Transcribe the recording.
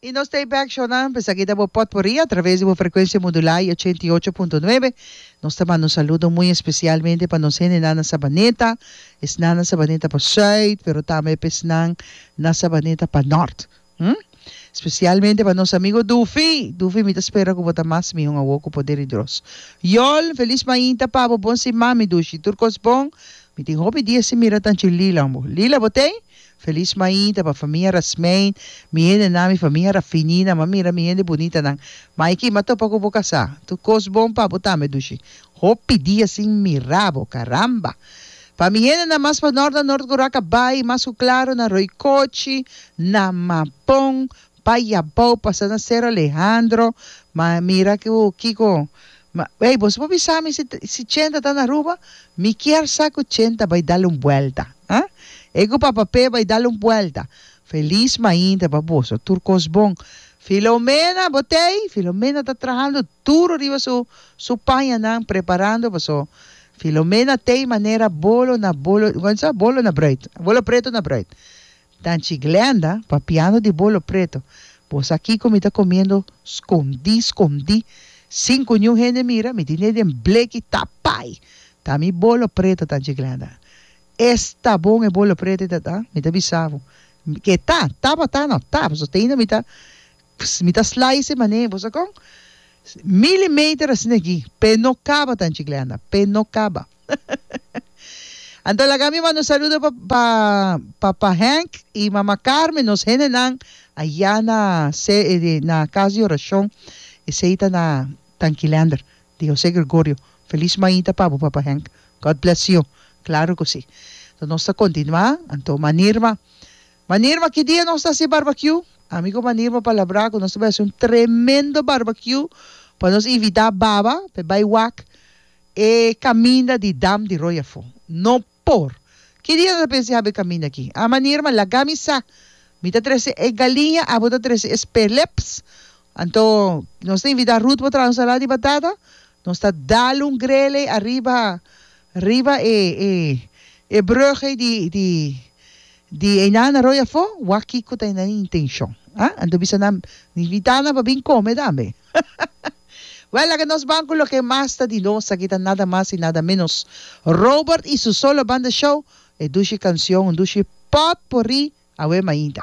Y nos ta e bek shownan p'esaki ta bo potpourri a traves di bo frecuencia modulá y ochenta y ocho punto nuebe. Nos ta manda un saludo muy especialmente pa nos hendenan na Sabaneta, esnan na Sabaneta pa Zuid, pero tambe p'esnan na Sabaneta pa Nort. Hm. Specialmente pa nos amigo Dufi! Dufi, mi ta spera cu bo ta mas mihon awo cu poder y dros. Yol, feliz mainta pa bo, bon siman mi Dushi, tur cos bon. Mi tin hopi dia sin mira tanchi Lila, hombre. Lila, bo t'ey? Feliz mainta pa famia Rasmein mi hende nan mi famia Rafini nan ma mira mi hende bunita nan Maiki ma topa ku bo kasá tu kos bon pa bo tambe dushi hopi dia sin mira bo karamba pa mi hende nan mas pa nort nan nort ku Raka Bai mas ku Klaro nan Roikochi nan Mapon Pa i abao pasa na Cerro Alejandro, ma mira cu kico, ma ey boso por bisa mi si si Chenta ta na Aruba? Mi kier sa cu Chenta bay dal un buelta, ah? E cu papa Pe bay dal un buelta. Feliz mainta pa boso, tur cos bon. Filomena, bo t'ey? Filomena ta trahando duro riba su su pañanan preparando paso Filomena t'ey manera bolo na bolo, como ta bisa? Bolo na broit, bolo preto na broit. Tanchi Glenda, papiando di bolo preto, Bo sa kiko mi ta comiendo scondí, scondí, sin cu niun hende mira, mi tin e den bleki tapai! Ta mi bolo preto, Tanchi Glenda. Es ta bon e bolo preto ei ta ta? Mi ta bisa bo. Ke ta? Tabata no ta, pasobra ta ainda mi ta Pss mi ta slice mané bo sa con? Milimeter asina aki pe no caba tan chicleanda pe no caba Anto laga mi manda un saludo pa pa papa Henk y mama Carmen nos hendenan aya na se na casa de oracion esey ta na Tanquilander di Jose Gregorio feliz maita pa bo papa Henk God bless you claro cu si nos ta continua anto manirma Wanneer ma ki dia nos ta hasi barbecue? Ami ku Wanneer mi a palabrá ku nos ta bai hasi un tremendo barbecue pa nos invitá baba pa e bai wak e kaminda di Dam di Royafo. No por! Ki dia no ta pensa di haba e kaminda aki? A Wanneer ma, laga mi sa. Mi ta trese e galiña, abo ta trese e sperleps, Anto nos ta invita Ruth pa traha un salada di batata, nos ta dal un grele ariba riba e e e brug ei di di di Enan Arroyo afó, wak kiko ta e nan intenshon, a? Anto bisa nan, invita nan pa bin kome tambe. Wèl, laka nos ban ku loke mas ta di nos, aki ta nada mas i nada ménos Robert i su Solo Banda Show, e dushi kanshon, un dushi pòt por ri, awema ainda.